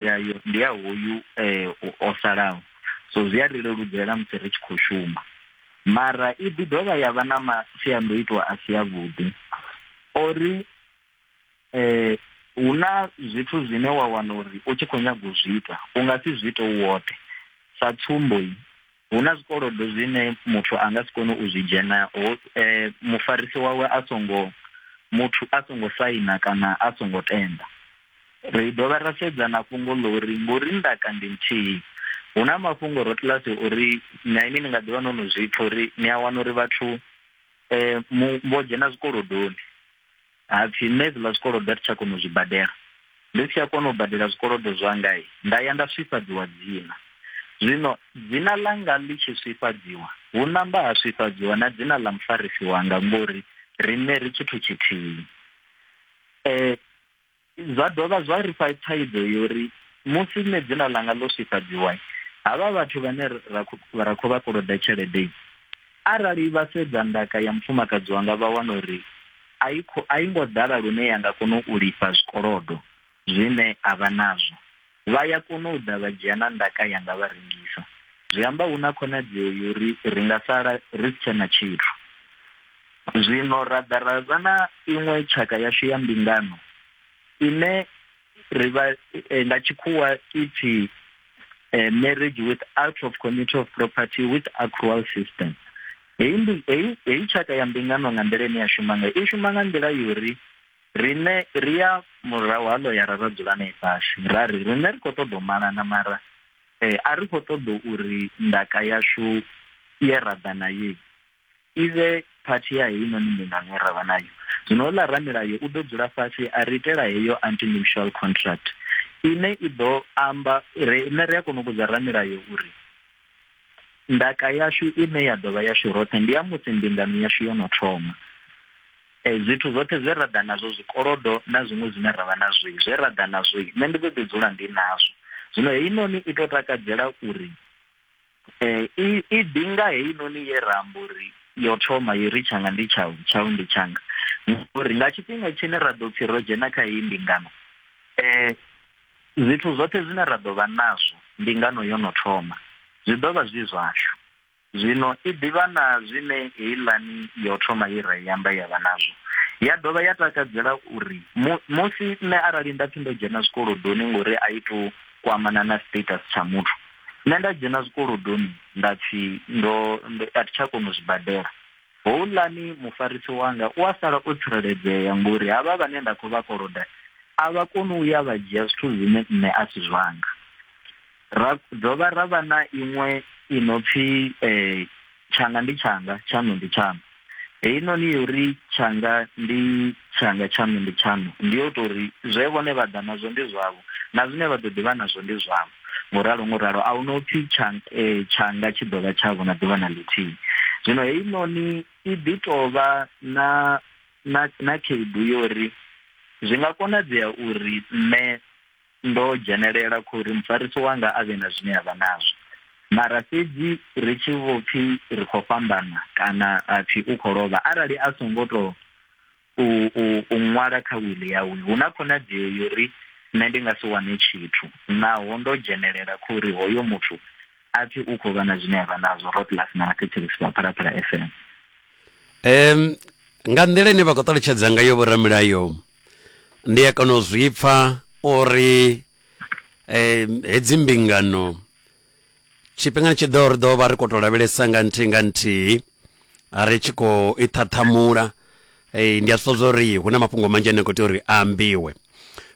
yayo ndi ya hoyu um o salaho so zwi a ri leludzela musi ri tshi khou shuma mara i ḓi dovha ya vha na masiandoitwa a si avhuḓi ori um hu na zwithu zwine wa wana uri u tshi khou nyaga u zwi ita u nga si zwi ite u woṱhe sa tsumbo hu na zwikolodo zwine muthu a nga si kone u zwi dzhena ho eh, mufarisi wawe a songo muthu a songo saina kana a songo tenda ri dovha ra sedza na fhungo ḽo uri ngori ndaka ndi nthihi hu na mafhungo ro tlasi uri na ini ni nga ḓivha no no zwipfa uri ni a wana uri vhathu um vho dzhena zwikolodoni Ha pfi nṋe hezwiḽa zwikolodo a thi tsha kona u zwi badela. Ndi si tsha kona u badela zwikolodo zwanga, nda ya nda swifhadziwa dzina. Zwino dzina ḽanga ḽi tshi swifhadziwa, hu namba ha swifhadziwa na dzina ḽa mufarisi wanga, ngori riṋe ri tshithu tshithihi. E, Zwa dovha zwa ri fha thaidzo ya uri musi nṋe dzina ḽanga ḽo swifhadziwa, havha vhathu vhane ra khou vha koloda tshelede arali vha sedza ndaka ya mufumakadzi wanga vha wana uri a i ngo ḓala lune ya nga kona u lifha zwikolodo zwine a vha nazwo. Vha ya kona u ḓa vha dzhia na ndaka yanga vha rengisa. Zwi amba hu na khonadzeo ya uri ri nga sala ri si tshe na tshithu. Zwino ra ḓa ra vha na iṅwe tshaka yashu ya mbingano ine ri vha nga tshikhuwa i pfi Marriage with Out of Committee of Property with Accrual System. Heyi tshaka ya mbingano nga nḓila ine ya shuma ngayo, i shuma nga nḓila ya uri Riṋe ri ya murahu ha ḽoyara ra dzula nae fhasi ra ri, Riṋe ri khou ṱoḓa u malana mara a ri khou ṱoḓa uri ndaka yashu ye ra ḓa nayo i vhe phathi ya heinoni mbingano ye ra vha nayo. Zwino houḽa ramilayo u ḓo dzula fhasi a ri itela heyo anti-nuptial contract ine i ḓo amba, riṋe ri a kona u vhudza ramilayo uri ndaka yashu ine ya ḓo vha yashu roṱhe ndi ya musi mbingano yashu yo no thoma. Eh, zwithu zwoṱhe zwe ra ḓa nazwo zwikolodo na zwiṅwe zwine ra vha nazwo zwe ra ḓa nazwo nṋe ndi ḓo ḓi dzula ndi nazwo zwino heinoni i to takadzela uri um i ḓi nga heinoni ye ra amba uri yo thoma yo ri tshanga ndi tshau tshau ndi tshanga uri nga tshifhinga tshine ra ḓo pfhi ro dzhena kha heyi mbingano um zwithu zwoṱhe zwine ra ḓo vha nazwo mbingano yo no thoma zwi ḓo vha zwi zwashu Zwino i ḓivha na zwine heiḽani ya u thoma ye ra i amba ya vha nazwo. Ya dovha ya takadzela u ri, Mu, musi nṋe arali nda pfi ndo dzhena zwikolodoni ngori a i tou kwamana na status tsha muthu, nṋe nda dzhena zwikolodoni nda pfi ndo, ndo, a thi tsha kona u zwi badela, houḽani mufarisi wanga u a sala o tsireledzea ngori havha vhane nda khou vha koloda a vha koni u ya vha dzhia zwithu zwine nṋe a si zwanga. ra dovha ra vha na iṅwe i no pfi um tshanga ndi tshanga tshaṋu ndi tshaṋu heinoni yo ri tshanga ndi tshanga tshaṋu ndi tshaṋu ndi yo tou ri zwe vhone vha ḓa nazwo ndi zwavho na zwine vha ḓo ḓivha nazwo ndi zwavho ngo ralo ngo ralo a hu no pfi eh, tshanga tshi ḓo vha tshavho na ḓuvha na ḽithihi zwino heinoni i ḓi tou vha na na na khaedu yo ri zwi nga konadzea uri nṋe Ndo dzhenelela khou ri mufarisi wanga a vhe na zwine a vha nazwo. Mara fhedzi ri tshi vho pfi ri khou fhambana kana a pfi u khou lovha, arali a songo tou u, u, u ṅwala kha wili yawe, hu na khonadzeo yo ri nṋe ndi nga si wane tshithu. Naho ndo dzhenelela khou ri hoyo muthu a pfi u khou vha na zwine a vha nazwo. Rotlas na Mathethekisi vha Phalaphala FM. Um, nga nḓila ine vha khou ṱalutshedza ngayo vhoramilayo ndi a kona u zwi pfa uri eh, hedzi mbingano tshifhingani tshi ḓo ri ḓo vha ri khou tou lavhelesa nga nthihi nga nthihi ri tshi khou i ṱhaṱhamula eh, ndi a zwi ṱoḓa uri hu na mafhungo manzhi ane a khou tea uri a ambiwe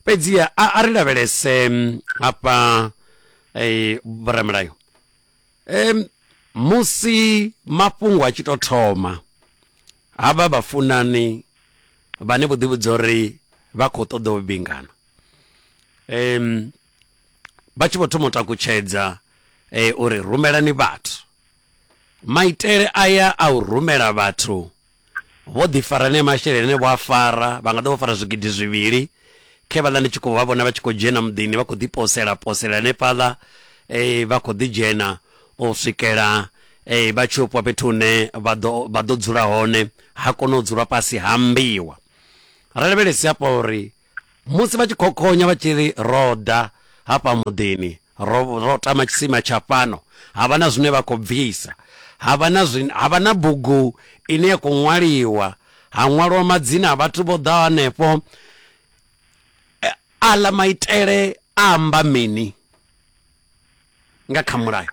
fhedziha a, a ri lavhelese mm, hafha eh, vhoramulayo um musi mafhungo a tshi tou thoma havha vhafunani vhane vho ḓivhudza uri vha khou ṱoḓa u vhingana um vha tshi vho thoma u takutshedza eh, uri rumelani vhathu maitele aya a u rumela vhathu Vho ḓi fara anea masheleni ane vho a fara, vha nga ḓo vho fara zwigidi zwivhili, khe vhaḽa ndi tshi khou vha vhona vha tshi khou dzhena muḓini vha khou ḓi posela posela hanefhaḽa vha khou ḓi dzhena u swikela vha tshi yo fhiwa fhethu hune vha ḓo vha ḓo dzula hone ha kona u dzulwa fhasi ha ambiwa. Ra lavhelese hafha uri Musi vha tshi khokhonya vha tshi ri, Ro ḓa hafha muḓini, ro, ro tama tshisima tsha fhano, ha vha na zwine vha khou bvisa, ha vha na, zwi, ha vha na bugu ine ya khou ṅwaliwa, ha ṅwalwa madzina a vhathu vho ḓaho hanefho. E, Aḽa maitele a amba mini nga kha mulayo?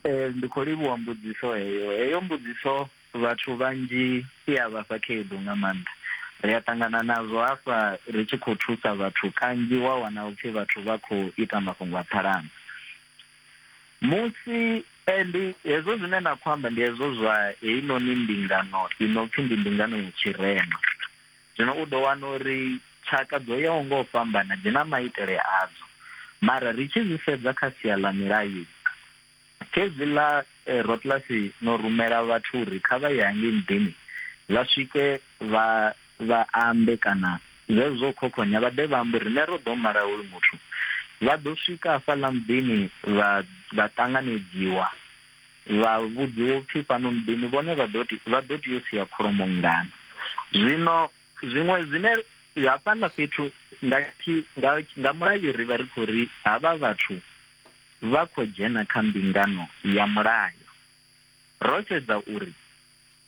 Eh, ndi khou livhuwa mbudziso heyo heyo mbudziso vhathu vhanzhi i a vhafha khaedu nga maanḓa ri a ṱangana nazwo hafha ri tshi khou thusa vhathu kanzhi wa wana upfhi vhathu vha khou ita mafhungo a phalanga musi eh, ndi hezwo zwine na khou amba ndi hezwo zwa heinoni mbingano i no pfhi ndi mbingano ya tshirema Zwino u ḓo wana uri tshaka dzo yaho nga u fhambana dzi na maitele adzo, mara ri tshi zwi sedza kha sia ḽa milayo, khezwi ḽa Rotlasi no rumela vhathu uri kha vha ye hangei muḓini vha swike vha vha ambe kana zwezwo zwa u khokhonya vha ḓe vha ambe uri riṋe ro ḓo mala hoyu muthu, vha ḓo swika hafhaḽa muḓini vha vha ṱanganedziwa. Vha vhudziwa u pfi, Fhano muḓini vhone vha ḓo tea, vha ḓo tea u sia kholomo nngana? Zwino zwiṅwe zwine hafhaḽa fhethu nga tshi, nga, nga mulayo ri vha ri khou ri havha vhathu vha khou dzhena kha mbingano ya mulayo. Ro sedza uri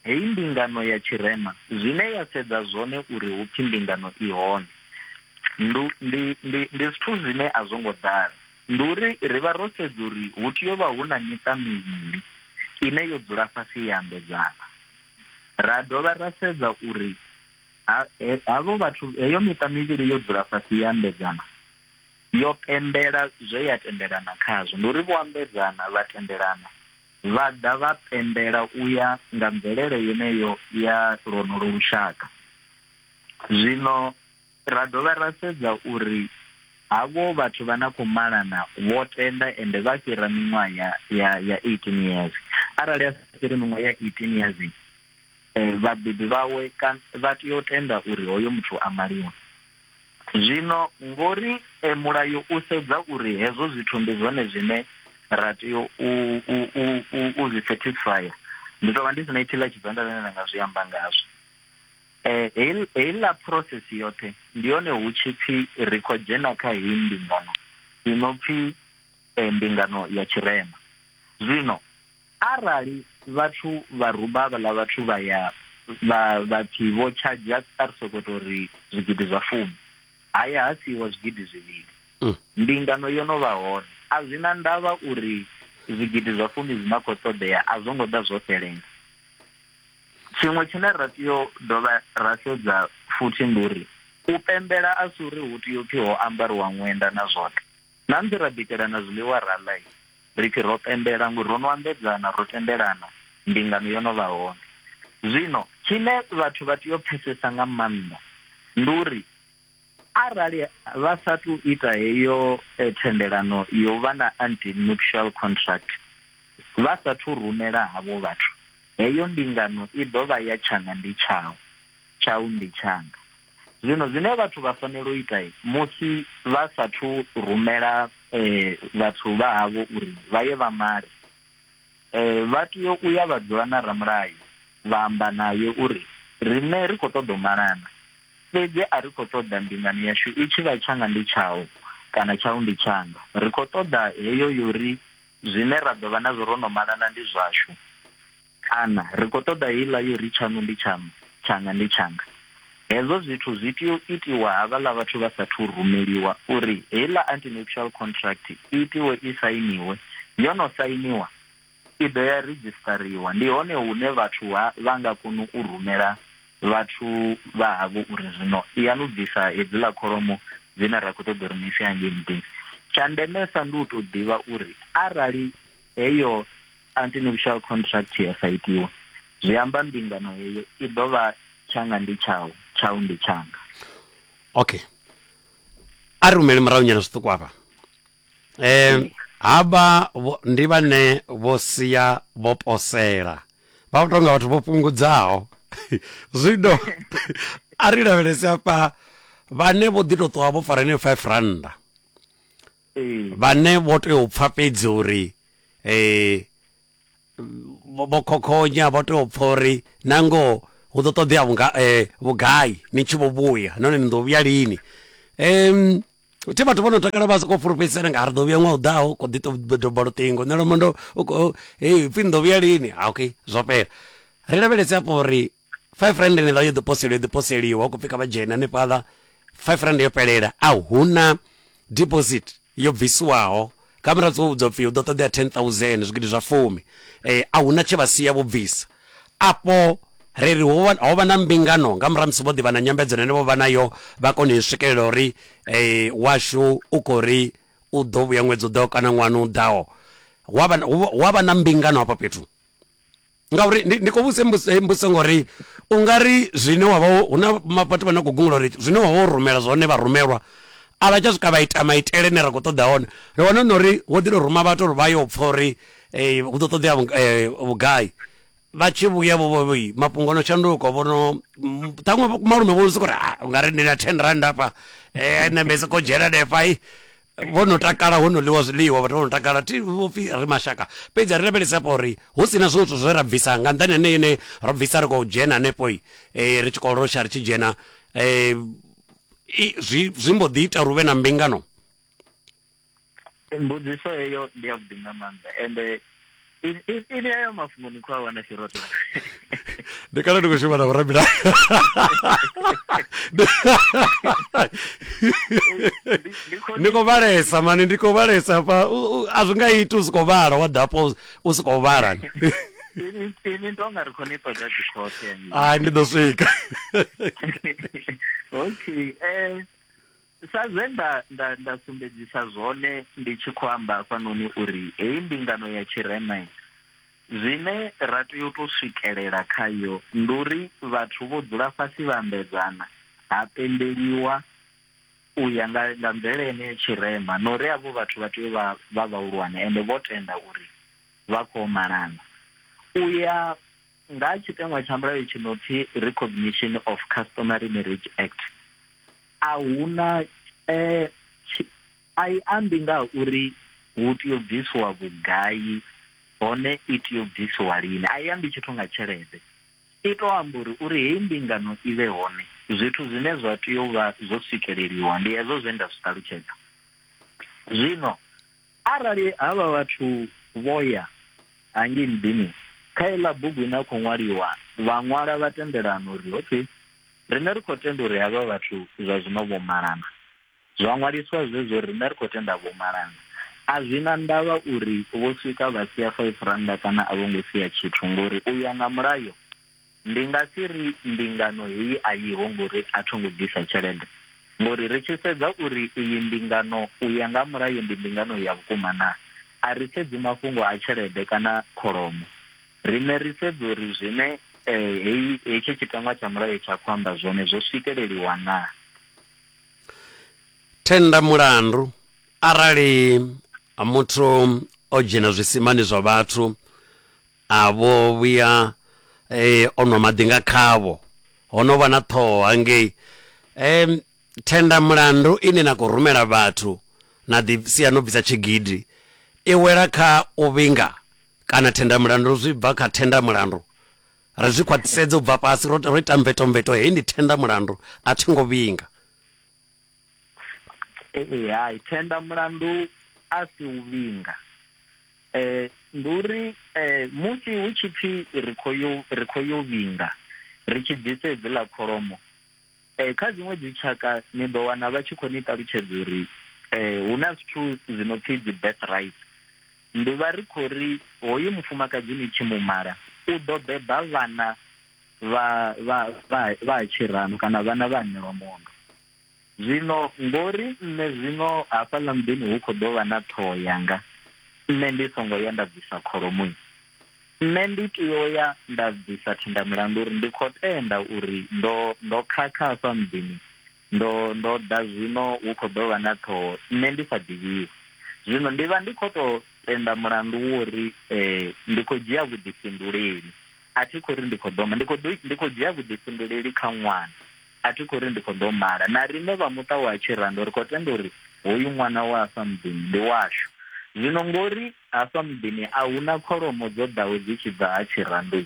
Heyi mbingano ya tshirema zwine ya sedza zwone uri hu pfi mbingano i hone ndi ndi ndi ndi zwithu zwine a zwo ngo ḓala ndi uri ri vha ro sedza uri hu tea u vha hu na miṱa mivhili ine yo dzula fhasi ya ambedzana ra dovha ra sedza uri havho vhathu heyo miṱa mivhili yo dzula fhasi ya ambedzana yo pembela zwe ya tendelana khazwo ndi uri vho ambedzana vha tendelana vha ḓa vha pembela u ya nga mvelele yeneyo ya lwonolo lushaka. Zwino ra dovha ra sedza uri havho vhathu vha na khou malana vho tenda ende vha fhira miṅwaha ya ya ya 18 years arali a sa fhiri miṅwaha ya 18 years eh, vhabebi vhawe vha tea u tenda uri hoyo muthu a maliwa Zwino ngori e, mulayo u sedza uri hezwo zwithu ndi zwone zwine ra tea u, u, u, u, u zwi satisfyer, ndi tou vha ndi si na itshi ḽa tshivenḓa zwine nda nga zwi amba ngazwo. Eh, heil- heiḽa process yoṱhe ndi yone hu tshi pfi ri khou dzhena kha heyi mbingano i no pfi eh, mbingano ya tshirema. Zwino Arali vhathu vha ruba havhaḽa vhathu vha ya vha vha pfi vho tshadzha a ri soko to ri zwigidi zwa fumi ha ya ha siiwa zwigidi zwivhili mm. mbingano yo no vha hone a zwi na ndavha uri zwigidi zwa fumi zwi na khou ṱoḓea a zwo ngo ḓa zwo fhelela tshiṅwe tshine ra tea u dovha ra sedza futhi ndi uri u pembela a si uri hu tea u pfhi ho ambariwa ṅwenda na zwoṱhe Na musi ra bikelana zwiḽiwa ra ḽa, ri tshi ro pembela, ngo ro no ambedzana, ro tendelana, mbingano yo no vha hone. Zwino, tshine vhathu vha tea u pfesesa nga maanḓa, ndi uri arali vha sa athu u ita heyo thendelano ya u vha na antenuptial contract, vha sa athu u rumela havho vhathu, heyo mbingano i ḓo vha ya tshanga ndi tshau, tshau ndi tshanga. Zwino zwine vhathu vha fanela u ita musi vha sathu rumela eh, vhathu vha havho uri vha ye vha male eh, vha tea u ya vha dzula na ramulayo vha amba naye uri riṋe ri khou ṱoḓa u malana fhedzi a ri khou ṱoḓa mbingano yashu i tshi vha tshanga ndi tshau kana tshau ndi tshanga ri khou ṱoḓa heyo yori zwine ra ḓo vha nazwo ro no malana ndi zwashu kana ri khou ṱoḓa heiḽa yo ri tshaṋu ndi tshaṋu tshanga ndi tshanga hezwo zwithu zwi tea u itiwa havhaḽa vhathu vha sathu rumeliwa uri heiḽa antinuptial contract i itiwe i sainiwe yo no sainiwa i ḓo ya redzhistariwa ndi hone hune vhathu ha vha nga kona u rumela vhathu vha havho uri zwino ya nu bvisa hedziḽa kholomo dzine ra khou ṱoḓa uri ni ise hangei muḓini tsha ndemesa ndi u tou ḓivha uri arali heyo antinuptial contract ya sa itiwa zwi amba mbingano heyo i ḓo vha tshanga ndi tshau tshau ndi tshanga okay a ri humele murahu nyana zwiṱuku afha um havha vho- ndi vhane vho sia vho posela vha vho tonga vhathu vho fhungudzaho zwino a ri lavhelese afha vhane vho ḓi to ṱuwa vho fara heneyo five randa vhane vho tea u pfa fhedzi uri vho khokhonya vho tea u pfa uri na ngoho hu ḓo ṱoḓea vhunga vhugai ni tshi vho vhuya nahone ni ḓo vhuya lini um thi vhathu vho no takala vha sokou fulufhedzisana nga ri ḓo vhuya ṅwaha u ḓaho kho ḓi to doba luṱingo nṋe lomondo hei pfhi ni ḓo vhuya lini okay zwo fhela ri lavhelese afho uri five rand eneiḽa yo ḓi poseliwa yo ḓi poseliwa u khou pfhi kha vha dzhene hanefhaḽa five rand yo fhelela a huna deposit yo bvisiwaho kha murahu dzi vhudzwa pfhi hu ḓo ṱoḓea 10000 zwigidi zwa fumi eh, a huna tshe vha sia vho bvisa afho ri ri ho vha na mbingano nga murahu musi vho ḓivha na nyambedzo nene vho vha nayo vha kone u swikelela uri eh, washu u khou ri u ḓo vhuya ṅwedzi u ḓaho kana ṅwana u ḓaho wa vha na mbingano hafha fhethu ngauri ndi, ndi khou vhuse mbuso ngori u nga ri zwine wa vha hu na vhathu vha na khou gungula uri zwine wa vha wo rumela zwone vha rumelwa a vha tsha swika vha ita maitele ne ra khou ṱoḓa hone ri wana na uri wo ḓi to ruma vhathu uri vha yo pfha uri eh, hu ḓo ṱoḓea eh, vhugai vha tshi vhuya vhovoi mafhungo no shanduka vhono ṱhaṅwe malume vho sokou ri ah, u nga ri ndi na ten rand afha eh, nṋe mbe sokou dzhena defai vho no takala ho no ḽiwa zwiḽiwa vhathu vho no takala thi vhopfi ri mashaka fhedzi ri lavhelesa hafha uri hu si na zwiṅwe zwithu zwe ra bvisa nga nḓani ane ine ro bvisa ri khou dzhena hanefho um ri tshi khou losha ri tshi dzhena um zwi zwi mbo ḓi ita uri hu vhe na mbingano mbudziso heyo ndi ya vhuḓi nga maanḓa ende ini ayo mafhungo ni khou a wana tshiroto ndi kana ndi khou shuma na vhorabila ndi khou vhalesa mani ndi khou vhalesa pa a zwi nga iti u si khou vhala wa dapo u si khou vhala ini ndo nga ri khou ni ṱoḓa dzikhothe ai ndi ḓo swika okay um Sa zwe nda, nda, nda sumbedzisa zwone ndi tshi khou amba hafhanoni uri heyi mbingano ya tshirema, zwine ra tea u tou swikelela khayo ndi uri vhathu vho dzula fhasi vha ambedzana, ha pembeliwa u ya nga, nga mvelele yeneyo ya tshirema, na uri avho vhathu vha tea u vha vha vhahulwane ende vho tenda uri vha khou yo malana. U ya. Nga tshiteṅwa tsha mulayo tshi no pfi Recognition of Customary Marriage Act, a hu na eh, tshi, a i ambi nga ha uri hu tea u bvisiwa vhugai hone i tea u bvisiwa lini. A i ambi tshithu nga tshelede, i tou amba uri uri heyi mbingano i vhe hone, zwithu zwine zwa tea u vha zwo swikeleliwa ndi hezwo zwe nda zwi ṱalutshedza zwino. Arali havha vhathu vho ya hangei muḓini, kha iḽa bugu ine ya khou ṅwaliwa, vha ṅwala vha tendelana uri, Okay, riṋe ri khou tenda uri havha vhathu zwa zwino vho malana. Zwa ṅwaliswa zwezwo uri riṋe ri khou tenda vho malana. A zwi na ndavha uri vho swika vha sia five rannda kana a vho ngo sia tshithu, ngori u ya nga mulayo, Ndi nga si ri mbingano heyi a yiho ngori a tho ngo ḓisa tshelede. Ngori ri tshi sedza uri iyi mbingano u ya nga ha mulayo ndi mbingano ya vhukuma naa, a ri sedzi mafhungo a tshelede kana kholomo. Riṋe ri sedza uri zwine heyi hetshi tshiteṅwa tsha mulayo tsha khou amba zwone zwo swikeleliwa naa. Thenda mulandu, Arali muthu o dzhena zwisimani zwa vhathu A vho vhuya e, o nwa maḓi nga khavho. Ho no vha na ṱhoho hangei. E, thenda mulandu ine na khou rumela vhathu na ḓi sia no bvisa tshigidi i wela kha u vhinga kana thenda mulandu zwi bva kha thenda mulandu. Ri zwi khwaṱhisedze u bva fhasi, ro, ro ita mvetomveto, heyi ndi thenda mulandu, a thi ngo vhinga. ee hai thenda mulandu a si u vhinga eh ndi uri eh musi hu tshi pfi ri kho yo ri kho yo vhinga ri tshi bvisa edzi ḽa kholomo eh kha dziṅwe dzi tshaka ni ḓo wana vha tshi kho ni ṱalutshedza uri eh hu na zwithu zwi no pfi dzi birth rights ndi vha ri khou ri hoyu mufumakadzi ni tshi mu mala u ḓo beba vhana vha vha vha vha tshirano kana vhana vha ṋewa mondo zwino ngori nṋe zwino hafhaḽa muḓini hu khou ḓo vha na ṱhoho yanga nṋe ndi songo ya nda bvisa kholomo nṋe ndi tea u ya nda bvisa thinda mulandu uri ndi khou tenda uri ndo ndo khakha hafha muḓini ndo ndo ḓa zwino hu khou ḓo vha na ṱhoho nṋe ndi sa ḓivhiwi zwino ndi vha ndi khou tou tenda mulandu wo uri um ndi khou dzhia vhuḓifhinduleli A thi khou ri ndi khou ḓo ma, ndi khou ḓo, ndi khou dzhia vhuḓifhinduleli kha ṅwana. A thi khou ri ndi khou ḓo mala. Na riṋe vha muṱa wa Tshirando ri khou tenda uri hoyu ṅwana wa hafha muḓini ndi washu. Zwino ngori hafha muḓini a hu na kholomo dzo ḓaho dzi tshi bva ha Tshirando,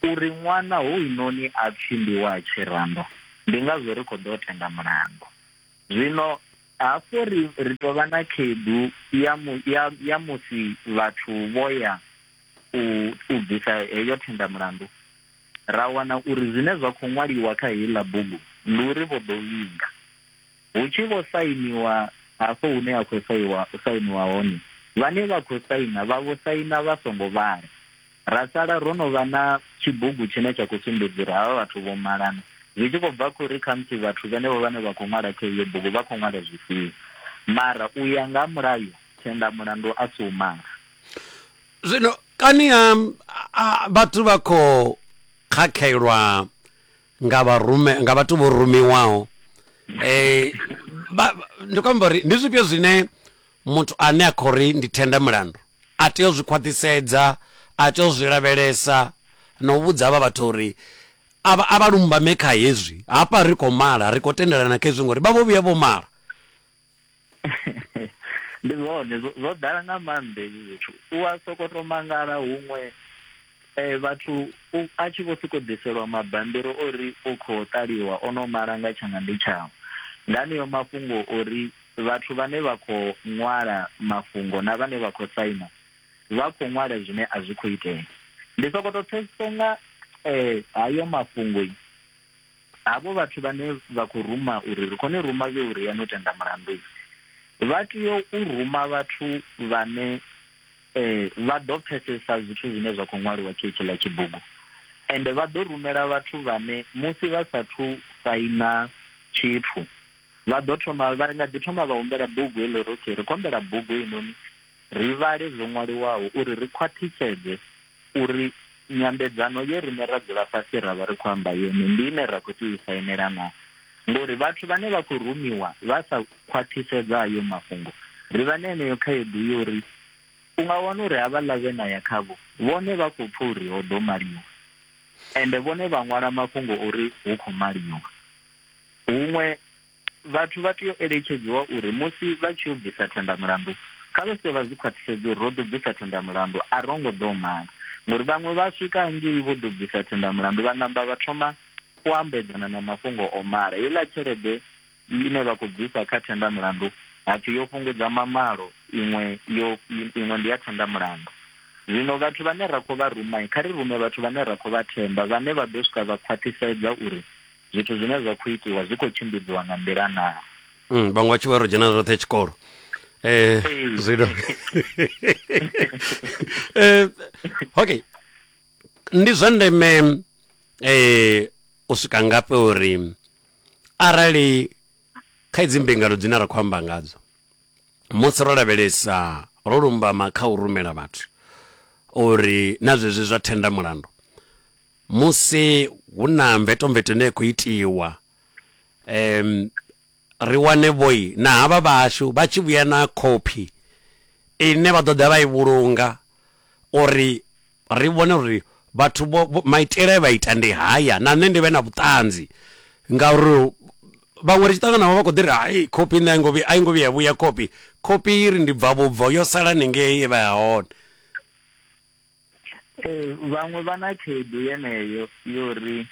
uri ṅwana hounoni a pfi ndi wa Tshirando, ndi ngazwo ri khou ḓo tenda mulandu. Zwino hafho ri, ri tou vha na khaedu ya, mu, ya, ya musi vhathu vho ya u u bvisa heyo thendamulandu, ra wana uri zwine zwa khou ṅwaliwa kha heiḽa bugu ndi uri vho ḓo vhinga. Hu tshi vho sainiwa hafho hune ha khou saiwa sainiwa hone, vhane vha khou saina vha vho saina vha songo vhala. Ra sala ro no vha na tshibugu tshine tsha khou sumbedza uri havha vhathu vho malana, zwi tshi khou bva kha uri khamusi vhathu vhenevho vhane vha khou ṅwala kha iyo bugu vha khou ṅwala zwifhio. Mara u ya nga ha mulayo, thendamulandu a si u mala. zwino kani ha vhathu vha khou khakhelwa nga vharume nga vhathu vho rumiwaho eh ndi khou amba uri ndi zwifhio zwine muthu ane a khou ri ndi thenda mulandu a tea u zwi khwaṱhisedza a tea u zwi lavhelesa na u vhudza avha vhathu uri a vha lumbame kha hezwi hafha ri khou mala ri khou tendelana kha hezwi ngori vha vho vhuya vho mala ndi zwone zwo zwo ḓala nga maanḓa hezwi zwithu u a soko to mangala huṅwe um vhathu u- a tshi vho siko ḓiselwa mabambiri o ri o khou ṱaliwa o no mala nga tshanga ndi tshawe nga aneyo mafhungo ori vhathu vhane vha khou ṅwala mafhungo na vhane vha khou saina vha khou ṅwala zwine a zwi khou itea ndi soko to pfhesesa nga um hayo mafhungo Havho vhathu vhane vha khou ruma uri ri khou ni ruma vhe u ria no tenda mulandu, vha tea u ruma vhathu vhane vha ḓo pfesesa zwithu zwine zwa khou ṅwaliwa kha hetshiḽa tshibugu. Ende vha ḓo rumela vhathu vhane musi vha sa thu saina tshithu vha ḓo thoma vha nga ḓi thoma vha humbela bugu heḽo uri okay ri khou humbela bugu heinoni ri vhale zwo ṅwaliwaho uri ri khwaṱhisedze uri nyambedzano ye riṋe ra dzula fhasi ra vha ri khou amba yone ndi ine ra khou tea u i sainela naa. Ngori vhathu vhane vha khou rumiwa vha sa khwaṱhisedza hayo mafhungo, ri vha na yeneyo khaedu ya uri u nga wana uri havhaḽa vhe na ya khavho vhone vha khou pfa uri ho ḓo maliwa ende vhone vha ṅwala mafhungo uri hu khou maliwa huṅwe. Vhathu vha tea u eletshedziwa uri musi vha tshi yo bvisa thendamulandu, kha vha swike vha zwi khwaṱhisedze uri ro ḓo bvisa thendamulandu, a ro ngo ḓou mala. Ngori vhaṅwe vha swika hangei vho ḓo bvisa thendamulandu vha namba vha thoma u ambedzana na mafhungo o mala. Heiḽa tshelede ine vha khou bvisa kha thendamulandu ha pfi yo fhungudza mamalo, iṅwe yo iṅwe ndi ya thendamulandu. Zwino vhathu vhane ra khou vha ruma, kha ri rume vhathu vhane ra khou vha themba vhane vha ḓo swika vha khwaṱhisedza uri zwithu zwine zwa khou itiwa zwi khou tshimbidziwa nga nḓila naa mm, vhaṅwe vha tshi vha ro dzhena roṱhe tshikolo eh zwino eh okay ndi zwa ndeme eh u swika ngafhi uri arali kha idzi mbingano dzine ra khou amba ngadzo musi ro lavhelesa ro lumbama kha u rumela vhathu uri na zwezwi zwa thenda mulandu musi hu na mvetomveto ine ya khou itiwa em ri wane vhoi na havha vhashu vha tshi vhuya na khophi ine vha ḓo ḓa vha i vhulunga uri ri vhone uri vhathu vho vho- maitele e vha ita ndi haya na nṋe ndi vhe na vhuṱanzi ngauri vhaṅwe ri tshi ṱangana navho vha khou ḓi ri hai khophi nṋe a i ngo vhuya- a i ngo vhuya vhuya khophi khophi i ri ndi bva vhubvo yo sala ningei ye vha ya hone ee vhaṅwe vha na khaedu yeneyo yo ri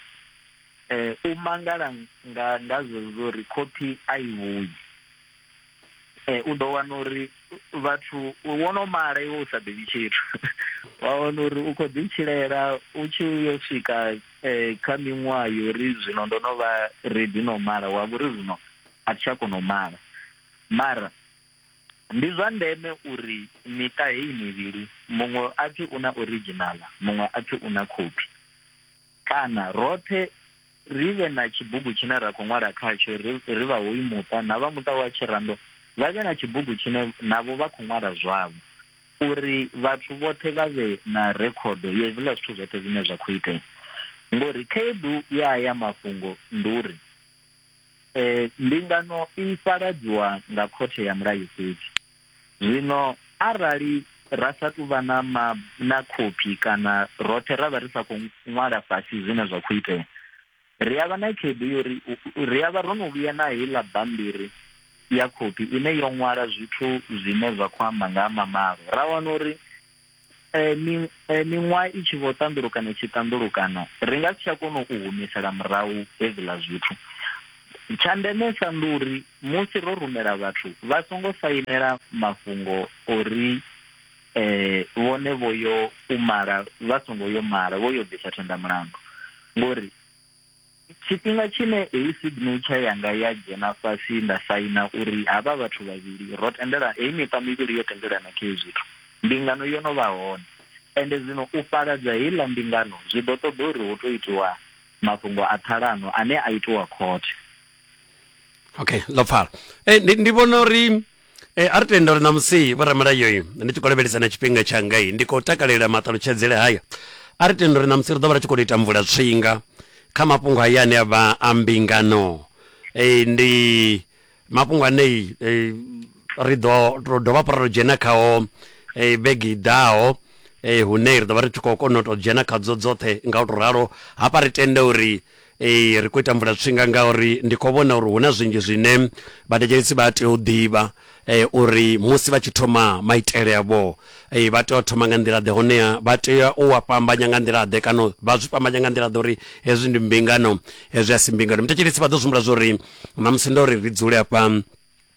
eh u mangala nga nga zwezwo ri khophi a i vhuyi eh u ḓo wana uri vhathu wo no mala iwe u sa ḓivhi tshithu wa wana uri u kho ḓi tshilela u tshi yo swika eh, kha miṅwaha yo ri zwino ndo no vha redi no mala wa vhori zwino a thi tsha kona u mala mara Ndi zwa ndeme uri miṱa heyi mivhili muṅwe a pfi u na orijinaḽa muṅwe a pfi u na khophi kana roṱhe ri vhe na tshibugu tshine ra khou ṅwala khatsho ri vha hoyu muṱa na vha muṱa wa Tshirando vha vhe na tshibugu tshine navho vha khou ṅwala zwavho uri vhathu vhoṱhe vha vhe na rekhodo ya hezwiḽa zwithu zwoṱhe zwine zwa khou itea ngori khaedu ya ya mafhungo ndi uri E, mbingano i fhaladziwa nga khothe ya mulayo fhedzi. Zwino arali ra sa tou vha na, ma, na khophi kana roṱhe ra vha ri sa khou ṅwala fhasi zwine zwa khou itea, ri a vha na khaedu yo ri ri a vha ro no vhuya na heiḽa bammbiri ya khophi ine yo ṅwala zwithu zwine zwa khou amba nga ha mamalo, ra wana uri eh, mi- eh, miṅwaha i tshi vho ṱanḓulukana i tshi ṱanḓulukana ri nga si tsha kona u humisela murahu hezwiḽa zwithu tsha ndemesa ndi uri musi ro rumela vhathu vha songo sainela mafhungo ori eh vhone vho yo u mala vha songo yo mala vho yo bvisa thendamulandu ngori Tshifhinga tshine heyi signature yanga ya dzhena fhasi nda saina uri havha vhathu vhavhili ro tendela, heyi miṱa mivhili yo tendelana kha hezwi zwithu, mbingano yo no vha hone. Ende zwino u fhaladza heiḽa mbingano zwi ḓo ṱoḓa uri hu tou itiwa mafhungo a ṱhalano ane a itiwa khothe. Okay, ḽo pfala. Ee, ndi, ndi vhona uri. E, a ri tenda uri ṋamusi vhoramulayoyi ndi tshi khou lavhelesa na tshifhinga tshangai ndi khou takalela maṱalutshedzele haya a ri tenda uri ṋamusi ri ḓo vha ri tshi khou tou ita mvula tswinga kha mafhungo haya ane a vha a mbingano e, ndi mafhungo ane e, ri ḓo ro dovha hafhu ra tou dzhena khao e, vhege i ḓaho e, hune ri ḓo vha ri tshi khou kona u tou dzhena khadzo dzoṱhe nga u tou ralo hafha ri tenda uri Ee, ri khou ita mvulatswinga ngauri ndi khou vhona uri hu na zwinzhi zwine vhathetshelesi vha tea u ḓivha eh, uri musi vha tshi thoma maitele avho eh, vha tea u thoma nga nḓila ḓe honeha vha tea u wa fhambanya nga nḓila ḓe kana vha zwi fhambanya nga nḓila ḓe uri hezwi ndi mbingano hezwi a si mbingano muthetshelesi vha ḓo zwi humbula zwo ri na musi ndo ri ri dzule afha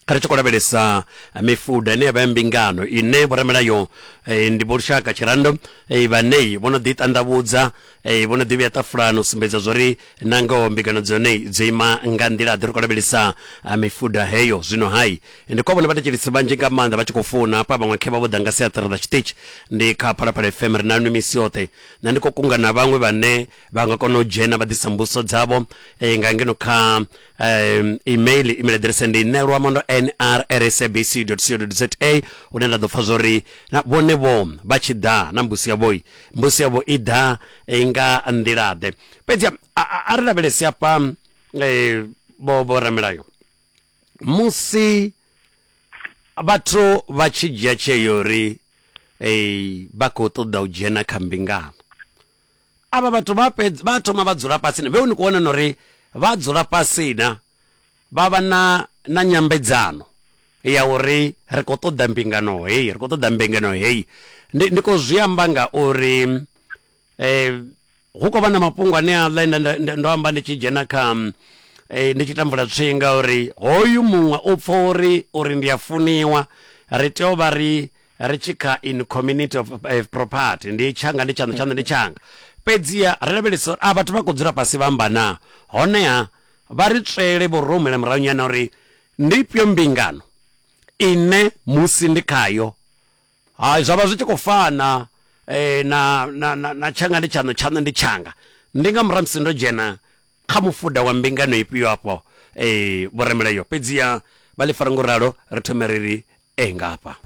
kha ri tshi khou lavhelesa eh, mifuda ine ya vha ya mbingano ine vhoramilayo eh, ndi vho lushaka tshirando eh, vhanei vho no ḓi ṱandavhudza eh, vho no ḓi vhuya ṱafulani u sumbedza zwori na ngoho mbingano dzone dzo ima nga nḓila ḓi ri khou lavhelesa eh, mifuda heyo zwino hai ndi kwa vhone vhathetshelisi vhanzhi nga maanḓa vha tshi khou founa hafha vhaṅwe khe vha vho ḓa nga siaṱari ḽa tshiṱitshi ndi kha phalaphala fm ri nanu misi yoṱhe na ndi khou kunga na vhaṅwe vhane vha nga kona u dzhena vha ḓisa mbuso dzavho eh, nga ngeno kha um, email email address ndi nṋe luamando nrsabc.co.za hune nda ḓo pfa zwori na vhone vho vha tshi ḓa na mbusi yavho i mbusi yavho i ḓa eh, nga nḓila ḓe fhedzi a- a a- a ri lavhelesi hafha eh, vho vho ramilayo musi vhathu vha tshi dzhia tsheo uri eh, vha khou ṱoḓa u dzhena kha mbingano avha vhathu vha fhedza vha thoma vha dzula fhasi na vhe ni kho wana na uri vha dzula fhasi na vha vha na na nyambedzano ya uri ri kho ṱoḓa mbingano heyi ri kho ṱoḓa mbingano heyi ndi ndi kho zwi amba nga uri eh hu khou vha na mafhungo ane a ḽa nda ndo amba ndi tshi dzhena kha eh, ndi tshi tambula tswinga uri hoyu muṅwe u pfha uri uri ndi a funiwa ri tea u vha ri ri tshi kha in community of eh, property ndi tshanga ndi tshaṋu tshaṋu ndi tshanga fhedziha ri lavhelesa uri a vhathu vha khou dzula fhasi vha amba na honeha vha ri tswele vho ro humela murahu nyana uri ndi ifhio mbingano ine musi ndi khayo hai zwa vha zwi tshi khou fana eh, na, na, na, na tshanga ndi tshaṋu tshaṋu ndi tshanga ndi nga murahu musi ndo dzhena kha mufuda wa mbingano ifhio afho eh, vhoremeleyo fhedziha vha ḽi fara ngo ralo ri thome ri ri e nga hafha.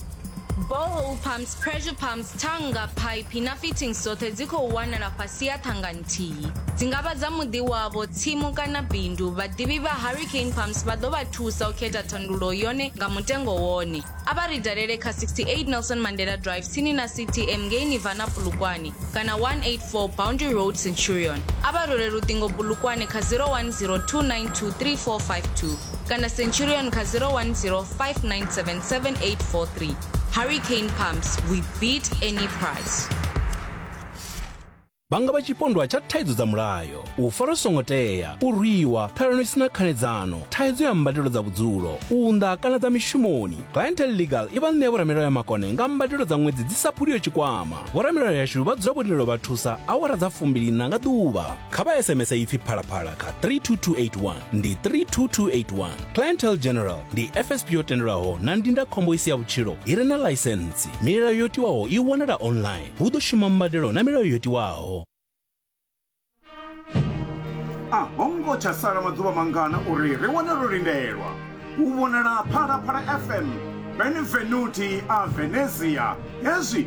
Borehole pumps, pressure pumps, thanga, phaiphi na fittings dzoṱhe dzi khou wanala fhasi ha thanga nthihi. Dzi nga vha dza muḓi wavho, tsimu kana bindu. Vhaḓivhi vha Hurricane Pumps vha ḓo vha thusa u khetha thandululo yone nga mutengo wone. A vha ri dalele kha 68 Nelson Mandela Drive tsini na CTM ngei Nirvana Polokwane kana 184 Boundary Road Centurion. A vha rule luṱingo Polokwane kha 010 292 3452. kana centurion kha 010 5977843 hurricane pumps we beat any price vha nga vha tshipondwa tsha thaidzo dza mulayo u fara songo tea u rwiwa ṱhalano isina khanedzano thaidzo ya mbadelo dza vhudzulo u nḓa kana dza mishumoni clientel legal i vha ṋea vhoramilayo ya makone nga mbadelo dza ṅwedzi dzi sa phuliyo tshikwama vhoramilayo yashu vha dzula vho lindela vha thusa awara dza fumbiliṋa nga ḓuvha kha vha sms ipfi phalaphala kha 32281 ndi 32281 clientele general ndi fsp yo tendelwaho na ndindakhombo i si ya vhutshilo i re na ḽaisentsi milayo yo tiwaho i wanala online hu ḓo shuma mbadelo na milayo yo tiwaho a ho ngo tsha sala maḓuvha mangana uri ri wane ro lindelwa u vhonala phalaphala fm benvenuti a venezia hezwi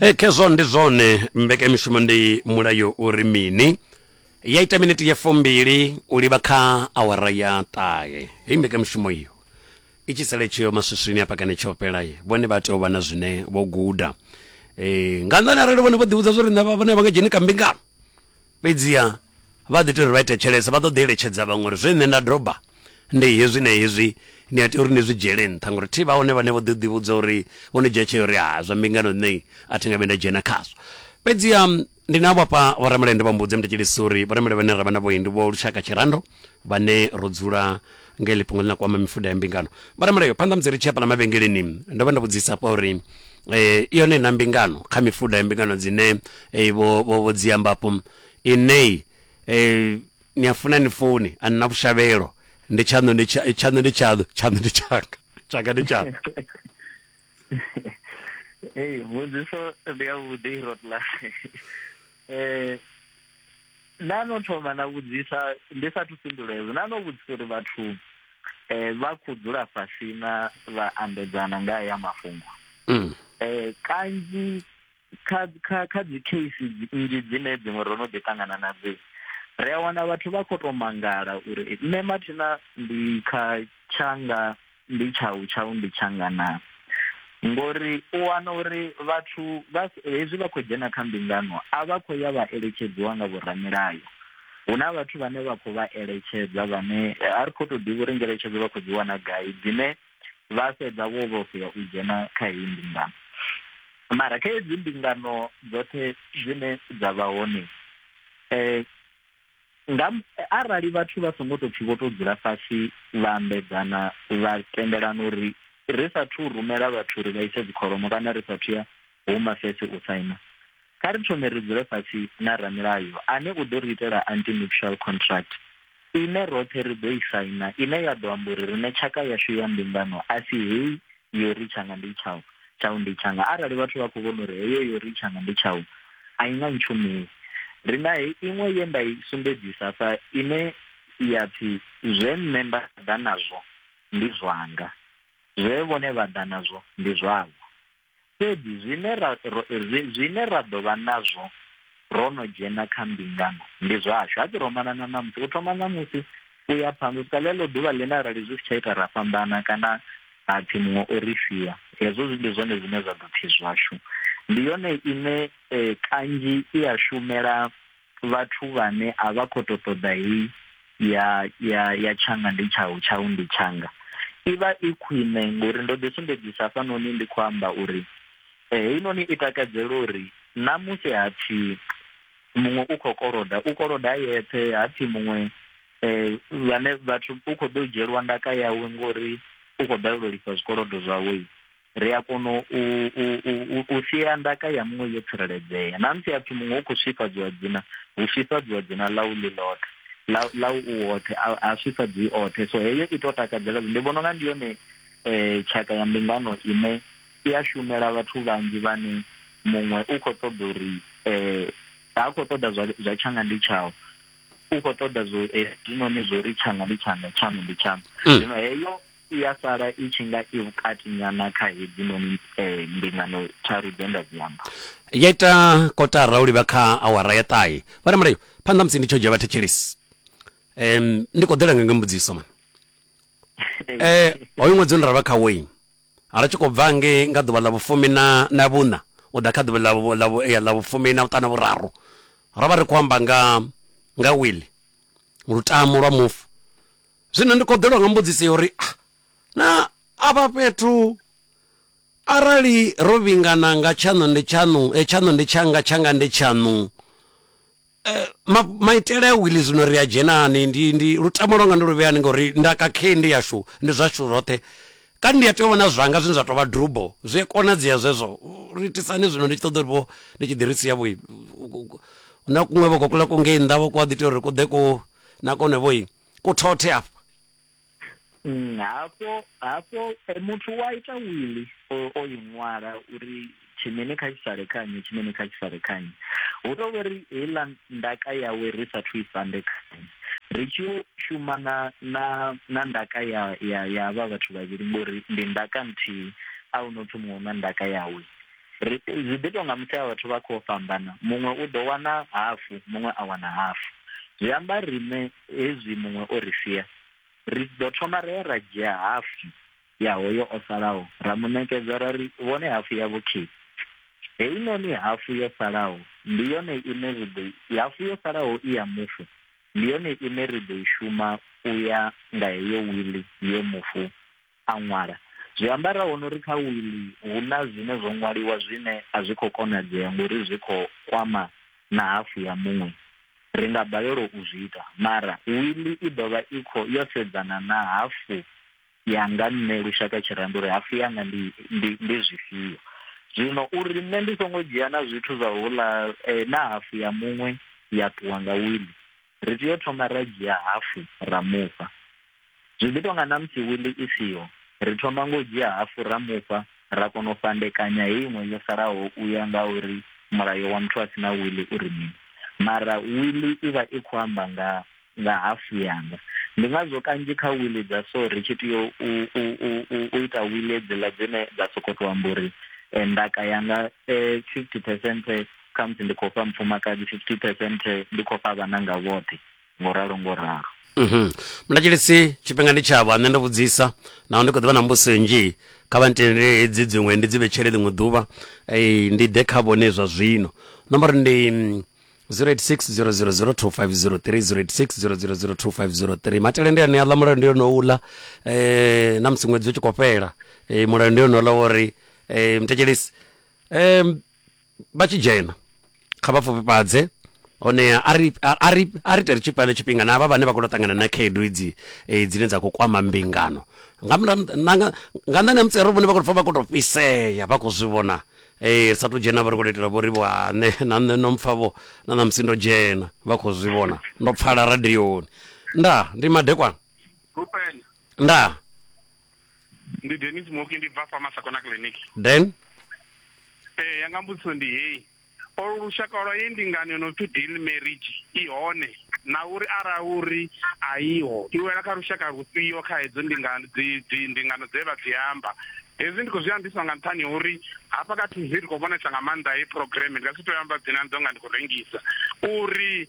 e khezwo ndi zwone mbekamishumo ndi mulayo uri mini ya ita miniti ya fumbili u livha kha awara ya ṱahe hei mbekamishumo iyo i tshi sele tsheo maswiswini a pakane tsho fhelaye vhone vha tea u vha na zwine vho guda e, nga nnḓani arali vhone vho ḓivhudza zwo ri nṋe vha- vhone vha nga dzheni kambingano Fhedziha vha ḓi tea uri vha ite tshelesa, vha ḓo ḓi eletshedza vhaṅwe uri zwe nṋe nda doba ndi hezwi na hezwi, ni a tea uri ni zwi dzhiele nṱha. Ngauri thi vha hone vhane vho ḓi ḓivhudza uri, vho no dzhia tsheo uri, Ha, zwa mbingano nṋe a thi nga vhuyi nda dzhena khazwo. Fhedziha ndi navho hafha vhoramelende vha Mbudzi, Mutatshelisi uri vhoramelevhane ra vha navhohi ndi vho lushaka tshirando. vhane ro dzula nga ili fhungo ḽi na kwama mifuda ya mbingano vha re mulayo phanḓa musi ri tshi ya fhala mavhengeleni ndo vha ndo vhudzisa hafha uri eh, i yone na mbingano kha mifuda ya mbingano dzine eh, vho vho vho dzi amba afho inei eh, ni a funa ni funi a nina vhushavhelo ndi tshaṋu ndi tsha- tshaṋu ndi tshaṋu tshaṋu ndi tshanga tshanga ndi tshanga Hey, mbudziso ndi ya vhuḓi Rotlas. eh na no thoma na vhudzisa ndi sa thu fhindula hezwo na no vhudzisa uri vhathu eh vha khou dzula fhasi na vha ambedzana nga ya mafhungo mm. eh kanzhi kha kha kha dzi case nnzhi dzine dziṅwe ro no ḓi ṱangana nadzo ri a wana vhathu vha khou tou mangala uri nṋe mathina ndi kha tshanga ndi tshau tshau ndi tshanga na ngori u wana uri vhathu hezwi vha khou dzhena kha mbingano a vha khou ya vha eletshedziwa nga vhoramilayo hu na vhathu vhane vha khou vha eletshedza vhane a ri khou tou ḓivha uri ngeletshedzo vha khou dzi wana gai dzine vha fhedza vho vhofhea u dzhena kha heyi mbingano mara kha hedzi mbingano dzoṱhe dzine dza vha hone um nga arali vhathu vha songo tou pfhi vho tou dzula fhasi vha ambedzana vha tendelana uri ri sathu rumela vhathu uri vha ise dzikholomo kana ri sathu ya huma fese u saina kha ri thome ri dzule fhasi na ramilayo ane u ḓo ri itela anti-nuptial contract ine roṱhe ri ḓo i saina ine ya ḓo amba uri riṋe tshaka yashu ya mbingano a si heyi yori tshanga ndi tshau tshau ndi tshanga arali vhathu vha khou vhona uri heyo yori tshanga ndi tshau a i nga ntshumeli ri na he iṅwe ye nda i sumbedzisa sa ine ya pfi zwe nṋe nda ḓa nazwo ndi zwanga zwe vhone vha ḓa nazwo ndi zwavho fhedzi zwine ra zwine ra ḓo vha nazwo ro no dzhena kha mbingano ndi zwashu ha ḓiromana na ṋamusi u thoma ṋamusi u ya phanḓa u swika ḽeḽo ḓuvha ḽine arali zwi si tsha ita ra fhambana kana ha pfhi muṅwe o ri sia hezwo zwi ndi zwone zwine zwa ḓo pfhi zwashu ndi yone ine eh, kanzhi i a shumela vhathu vhane a vha khou tou ṱoḓa heyi ya ya ya tshanga ndi tshau tshau ndi tshanga i vha i khwine ngori ndo ḓisumbedzisa hafhanoni ndi khou amba uri Eh, heinoni i takadzela uri na musi ha pfi muṅwe u khou koloda u koloda a yeṱhe ha pfi muṅwe um vhane vhathu u khou ḓo dzhielwa ndaka yawe ngori u khou balelwa lifha zwikolodo zwawe ri a kona u sia ndaka ya muṅwe yo tsireledzea na musi hapfi muṅwe u khou swifhadziwa dzina hu swifhadziwa dzina ḽa u ḽi ḽoṱhe ḽa u woṱhe a swifhadziwi oṱhe so heyo i tou takadzela ndi vhona unga ndi yone um tshaka ya mbingano ine i a shumela vhathu vhanzhi vhane muṅwe u khou ṱoḓa uri um ha khou ṱoḓa zwa zwa tshanga ndi tshau u khou ṱoḓa zwo hezwinoni zwo ri tshanga ndi tshanga tshaṋu ndi tshaṋu Mm. zwino heyo i ya sala i tshi nga i vhukati nyana kha hedzinoni um mbingano tharu dze nda dzi amba ya ita kotara u livha kha awara ya ṱahe vha na mulayo phanḓa musi ndi tsho dzhia vhathetshelesi um ndi khou ḓela nga nga mbudziso man um hoyu ṅwedzi une ra vha kha wayne A ri tshi khou bva ngei nga ḓuvha ḽa vhufumi na, na vhuṋa u ḓa kha ḓuvha ḽa, ḽa, ya, ḽa vhufumi na vhuṱanu na vhuraru, ro vha ri khou amba nga, nga wili, lutamo lwa mufu. Zwino ndi khou ḓelwa nga mbudziso ya uri, Ah, na afha fhethu, arali ro vhingana nga tshaṋu ndi tshaṋu, tshaṋu ndi tshanga, tshanga ndi tshaṋu, Eh, ma, maitele a wili zwino ri a dzhenani ndi ndi lutamo lwanga ndi lu vheyani ngori ndaka khe ndi yashu ndi zwashu zwoṱhe kani ndi a tea u vha na zwanga zwine zwa tou vha drubo zwi a konadzea zwezwo ri itisani zwino ndi tshi ṱoḓa uri vho ndi tshi ḓi ri sia vho na kuṅwe vho kokula ku ngei nnḓa vho ku a ḓi tea uri ku ḓe ku na kone vho ku thothe afha mm, hafho hafho eh, muthu wa ita wili o i ṅwala uri tshimene kha tshi sale khanye tshimene kha tshi sale khanye hu tou vhori heiḽa ndaka yawe ri sathu i sande khanye ri tshi yo shuma na na na ndaka ya ya ya havha vhathu vhavhili ngori ndi ndaka nthihi a hu no pfhi muṅwe na ndaka yawe ri zwi ḓi tou nga musi a vhathu vha khou fhambana muṅwe u ḓo wana hafu muṅwe a wana hafu zwi amba riṋe hezwi muṅwe o ri sia, ri ḓo thoma ra ya ra dzhia hafu ya hoyo o salaho ra mu ṋekedza ra ri, Vhone hafu ya vhukhithi. Heinoni hafu yo salaho ndi yone ine ri ḓo hafu yo salaho i ya mufu ndi yone ine ri ḓo i shuma u ya nga heyo wili ye mufu a ṅwala. Zwi amba ra vhona uri kha wiḽi hu na zwine zwo ṅwaliwa zwine a zwi khou konadzea ngori zwi khou kwama na hafu ya muṅwe. Ri nga balelwa u zwi ita, mara wiḽi i ḓo vha i khou yo sedzana na hafu yanga nṋe Lushaka Tshirendo uri hafu yanga ndi ndi ndi zwifhio. Zwino uri nṋe ndi songo dzhia na zwithu zwa houḽa na hafu ya muṅwe ya ṱuwa nga wiḽi, ri tea u thoma ra dzhia hafu ra mufha. Zwi ḓi tou nga na musi wiḽi i siho, ri thoma nga u dzhia hafu ra mufha ra kona u fhandekanya heyi iṅwe yo salaho u ya nga uri mulayo wa muthu a si na wiḽi u ri mini. Mara wiḽi i vha i khou amba nga nga hafu yanga. Ndi ngazwo kanzhi kha wiḽi dza so ri tshi tea u, u, u, u, u ita wiḽi hedziḽa dzine dza sokou tou amba uri ndaka yanga 50 percent khamusi ndi khou fha mufumakadzi 50 percent ndi khou fha vhananga vhoṱhe ngo ralo ngo ralo mhm. mlatshilisi tshifhinga ndi tshavho a nṋe ndo vhudzisa naho ndi khou ḓivha na mbuso nnzhi kha vha ntendele hedzi dziṅwe ndi dzi vhetshele ḽiṅwe ḓuvha ndi ḓe kha vhone zwa zwino nomboro ndi 0860002503 matele ndi ane aḽa mulayo ndi yone uḽa eh na musi ṅwedzi u tshi khou fhela eh mulayo ndi yone uḽa wori eh mtekelisi eh vha tshi dzhena kha vha pfufhifhadze hone a ri a ri a ri tere tshifhane tshifhinga na avha vhane vha khou ṱangana na khaedu idzi eh, dzine dza khou kwama mbingano nga nga nḓani ha mutsero vhone vha khou pfa vha khou tou fhisea vha khou zwi vhona eh, ri sa tou dzhena vha ri khou itela vho ri vho ane na nṋe no mpfa vho na na musi ndo dzhena vha khou zwi vhona ndo pfala radioni nda ndi madekwana nda ndi denis moki ndi bva fa masakona clinic then ee eh, yanga mbudziso ndi heyi olu lushaka lwa ye ndingani no pfi deal marriage i hone na uri ara uri a iho i wela kha lushaka lufhio kha hedzo ndingano ndingano dze vha dzi amba hezwi ndi khou zwi ambiswa nga nṱhani uri hafha kha tv ri khou vhonesa nga maanḓa he programme ndi nga si to amba dzina ndo nga ndi khou rengisa uri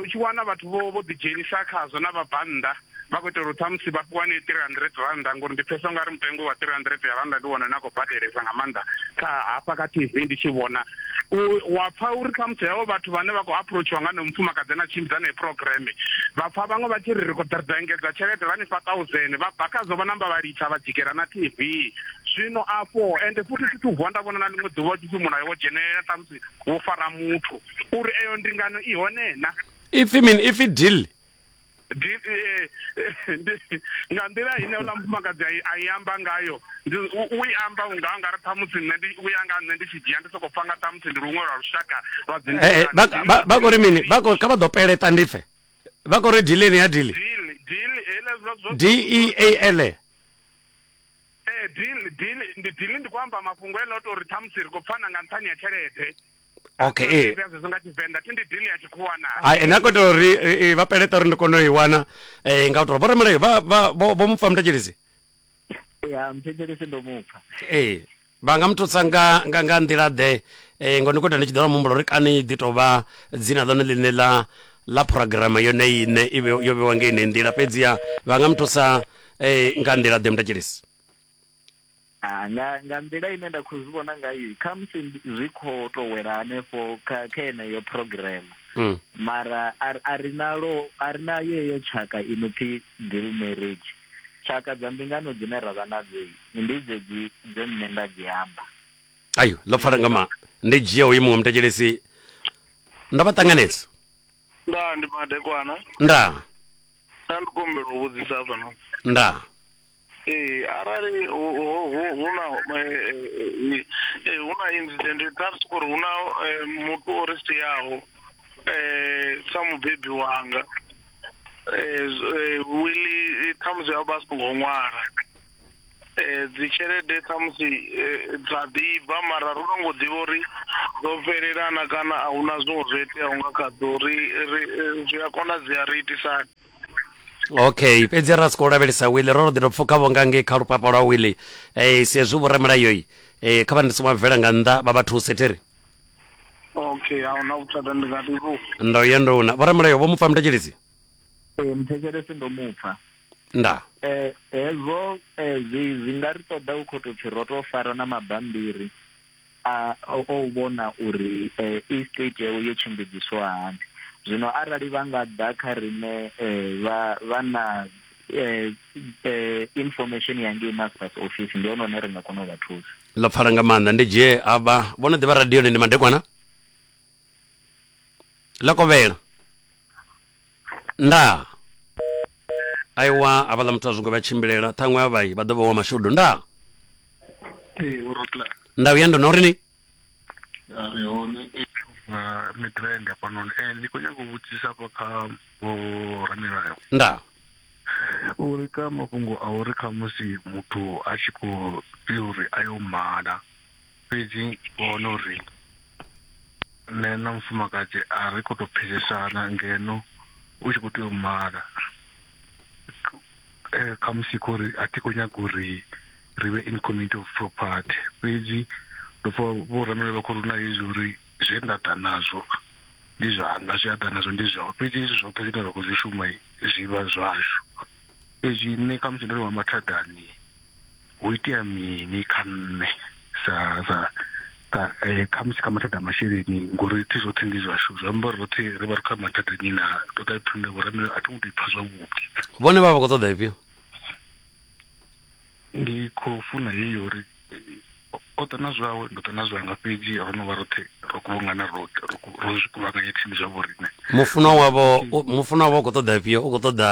U tshi wana vhathu vho vho ḓi dzhenisa khazwo na vha bannḓa vha khou itela uri ṱhamusi vha fhiwane three hundred rannda ngori ndi pfhesesa ungari mutengo wa three hundred ya rannda ndi wone une a khou badelesa nga maanḓa kha hafha kha T_V ndi tshi vhona wa pfha uri ṱhamusi havho vhathu vhane vha khou aphurotshiwa nga honoyo mufumakadzi ane a tshimbidza heneyo phurogireme vha pfha vhaṅwe vha tshi ri ri khou ḓa ri ḓo engedza tshelede vha ni fha thousand vha bva khazwo vha namba vha litsha vha dzikela na T_V zwino afho ende futhi thi thu vuwa nda vhona na ḽiṅwe ḓuvha u tshi pfhi mulayo wo dzhenelela ṱhamusi wo fara muthu uri eyo ndingano i hone na ipfi mini ipfi deal eh, nga nḓila ine uḽa mufumakadzi a i amba ngayo u i amba unga nga ri ṱhamusi nṋe ndi u ya nga nṋe ndi tshi dzhia ndi sokou pfa nga ṱhamusi ndi luṅwe lwa lushaka lwa dzi eh, eh, vha kori mini vha kha vha ḓo peleta ndi pfe vha kori dileni ya dili d e a l dili ndi dili ndi khou amba mafhungo ene o tou ri ṱhamusi ri khou pfana nga nṱhani ya tshelede okay ee Zwi a zwi nga tshivenḓa thi ndi dini ya tshikhuwa na Hai, ene a khou itela uri eh, eh, vha peleta uri ndi kone u i wana eh, nga u tou vhoramulayo vha- vha- vho vho mupfa muthetshelesi ya mthetshelesi ndo mupfa ee vha nga muthusa nga nga nga nḓila ḓe eh, ngo ndi khou ita ndi tshi ḓo vha muhumbulo uri kani ḓi tou vha dzina ḽone ḽine ḽa ḽa phurogirama yone ine i vhe- yo vhewa nga ine nḓila fhedziha vha nga muthusa eh, nga nḓila ḓe muthetshelesi Ah, nga nga nḓila ine nda khou zwi vhona ngayo khamusi ndi- zwi khou tou wela hanefho kha kha yeneyo program Mm. mara a ri- a ri nalo a ri na yeyo tshaka i no pfi deal marriage tshaka dza mbingano dzine ra vha nadzo ndi dzedzi dze nṋe nda dzi amba ayo ḽo pfala nga ma ndi dzhia uyu muṅwe mutetshelesi ndo vha ṱanganedza nda ndi madekwana nda nda ndi kombela u vhudzisa fhano nda Ee arali hu hu na hu na incident kha ri sokori hu na muthu o ri siaho sa mubebi wanga wiḽi khamusi vha si ngo ṅwala dzi tshelede khamusi dza ḓibva mara ro no ngo ḓivha uri dzo fhelelana kana a huna zwiṅwe zwo iteaho nga kha dzo ri ri zwi a konadzea ri itisa hani. okay fhedzi ra si khou lavhelesa wili ro ro ḓi to pfuka vho nga ngei kha lupapa lwa wili um si hezwi vhoramilayoi um kha vha ndi songo bvela nga nnḓa vha vha thuse thiri okay a huna vhuthada ndi nga ḓivhu ndo ye ndo una vhoramulayo vho mupfa muthetshelesi ee muthetshelesi ndo mupfa nda eh hezwo eh, zwi zwi nga ri ṱoḓa u khou tou pfhi ro tou fara na mabambiri A o u vhona uri estate yawe yo tshimbidziswa hani. Zwino arali vha nga ḓa kha riṋe vha vha na information ya ngei masters office ndi hone hune ri nga kona u vha thusa. Ḽo pfala nga maanḓa ndi dzhie avha vho no ḓivha radioni ndi madekwana ḽa kovhela. ndaa aiwa havhaḽa muthu a zwingo vha tshimbilela ṱhaṅwe a vhai vha ḓo vha wa mashudu ndaa ee urotla nda uya ndo no ri ni a ri hone na midrand hafhanoni um eh, ndi khou nyanga u vhudzisa hafha kha vho ramilayo ndaa uri ka mafhungo a uri khamusi muthu a tshi khou tea uri a yo mala Fhedzi vho wana uri nṋe na mufumakadzi a ri khou tou pfesesana ngeno u tshi khou tea u mala khamusi kha uri a thi khou nyaga uri ri vhe in community of property. Fhedzi ndo pfha vho ramilayo vha khou ri huna hezwi uri zwe nda ḓa nazwo ndi zwanga zwe a ḓa nazwo ndi zwawe fhedzi hezwi zwoṱhe zwine ra khou zwi shuma zwivha zwashu, fhedzi nṋe khamusi ndo no vha mathadani. Ho itea mini kha nṋe sa sa ka eh, kha musi kha mathada a masheleni ngori thi zwoṱhe ndi zwashu zwi amba uri roṱhe ri vha ri kha mathada nyi na ṱoḓa thundo vhoramelo a thi ngo ḓipfa zwavhuḓi vhone vha vha khou ṱoḓa ifhio ndi khou funa heyi uri eh, o ḓa na zwawe ndo ḓa na zwanga fhedzi ro no vha roṱhe ro kuvhangana roṱhe ro ku- ro zwi kuvhanganya thini zwa vhoriṋe mufunwa wavho u- mufunwa wavho u khou ṱoḓa ifhio u khou ṱoḓa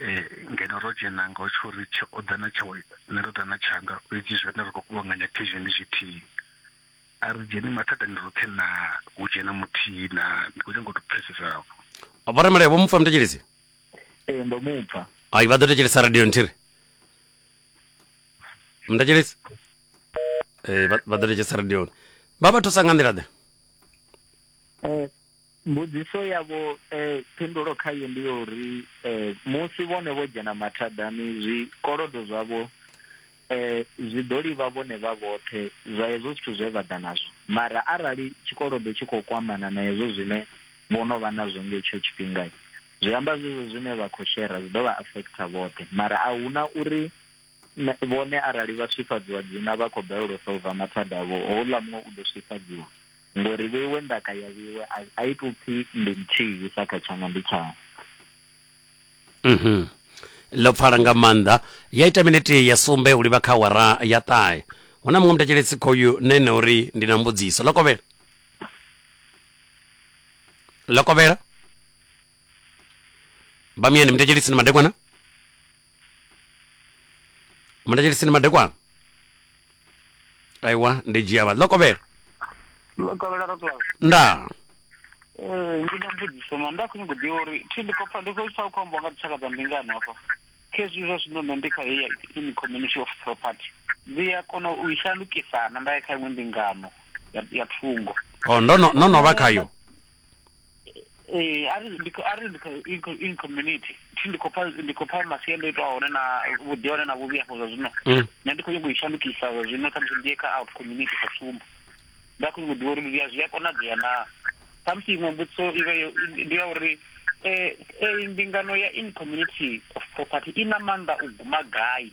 Ee, ngeno ro dzhena nga u tshori tshe o ḓa na tshawe nṋe ndo ḓa na tshanga fhedzi zwone ri khou kuvhanganya khezhi ndi zwithihi. A ri dzheni mathadani roṱhe naa? Hu dzhena muthihi naa? Ndi khou nyanga u tou pfesesa afho. Vho Ramalea vho mu pfa muthetshelesi? Ee, ndo mu pfa. Hai, vha ḓo thetshelesa radio nthihi ri. Muthetshelesi? Ee, vha vha ḓo thetshelesa radioni. Vha vha thusa nga nḓila ḓe. Eh, Mbudziso yavho phindulo khayo ndi ya uri musi vhone vho dzhena mathadani zwikolodo zwavho zwi ḓo livha vhone vha vhoṱhe zwa hezwo zwithu zwe vha ḓa nazwo, mara arali tshikolodo tshi khou kwamana na hezwo zwine vho no vha nazwo nga hetsho tshifhinga zwi amba zwezwo zwine vha khou shera zwi ḓo vha affecter vhoṱhe mara a huna uri Vhone arali vha swifhadziwa dzina vha khou balelwa u solva mathada avho, houḽa muṅwe u ḓo swifhadziwa. Ngori vheiwe ndaka ya vheiwe, a, a i tou pfi ndi nthihi sa kha tshanga ndi tshau. Mhm. Ḽo pfala nga maanḓa. Ya ita minete ya sumbe u livha kha awara ya ṱahe. Hu na muṅwe mutetsheletsi khoyu na ene uri ndi na mbudziso. Ḽo kovhela? Ḽo kovhela? Bamyani mutetshelisi ni madekwana? mutacheliseni madekwana aiwa ndi dzhia vha ḽokovhela lokovhela roklao ndaa Eh, ndi na mbudziso ma nda khonyago ḓivha uri thi ndi khou pfa ndi khou pfa u khou ambiwa nga dzitshaka dza mbingano hafha khezwi zwa zwino nṋe ndi kha heya in community of property ndi a kona u i shandukisana nda ya kha iṅwe mbingano ya- ya thungo o ndo no- no no vha khayo ee ari ndi ari ndi in community thi ndi khopha ndi khopha masiandoitwa a hone na vhuḓi hone na vhuvhi afho zwa zwino mm. nṋe ndi khou nyanga u i shandukisa zwa zwino khamusi ndi ye kha out community sa tsumbo nda khou nyanga u ḓivha uri zwi a zwi a konadzea naa khamusi iṅwe mbudziso i vhe ndi ya uri um mbingano ya in community of property i na maanḓa u guma gai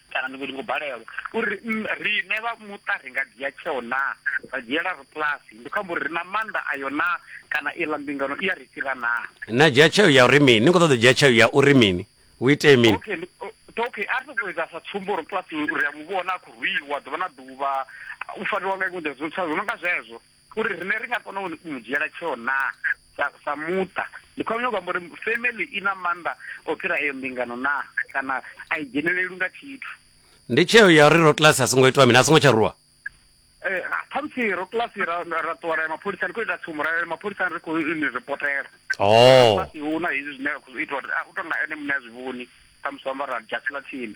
Kana ndi khou balelwa uri riṋe vha muṱa ri nga dzhia tsheo naa, ra dzhiela rabulasi, ndi khou amba uri ri na maanḓa ayo naa, kana iḽa mbingano i a ri fhira naa? Na dzhia tsheo ya uri mini? Ni khou ṱoḓa u dzhia tsheo ya uri mini? Hu itee mini? Okay, okay, a ri sokou ita sa tsumbo, rabulasi ri a mu vhona a khou rwiwa ḓuvha na ḓuvha, u fariwa nga iṅwe nḓila, zwo no nga zwezwo. uri rine ri nga kona u mu dzhiela tsheo na sa sa muṱa ndi khou nyanga amba uri family i na maanḓa o fhira eyo mbingano na kana a i dzheneleli nga tshithu ndi tsheo ya uri ro class a songo itwa mini a songo tsha ruwa eh khamusi ro class ra ra ṱuwa ra mapholisa ndi khou ita tsumbo ra mapholisa ri khou ni reportela oh hu na hezwi zwine ra khou itwa u tonga ene muṋe a zwi vhoni khamusi amba ra dzhasela tsini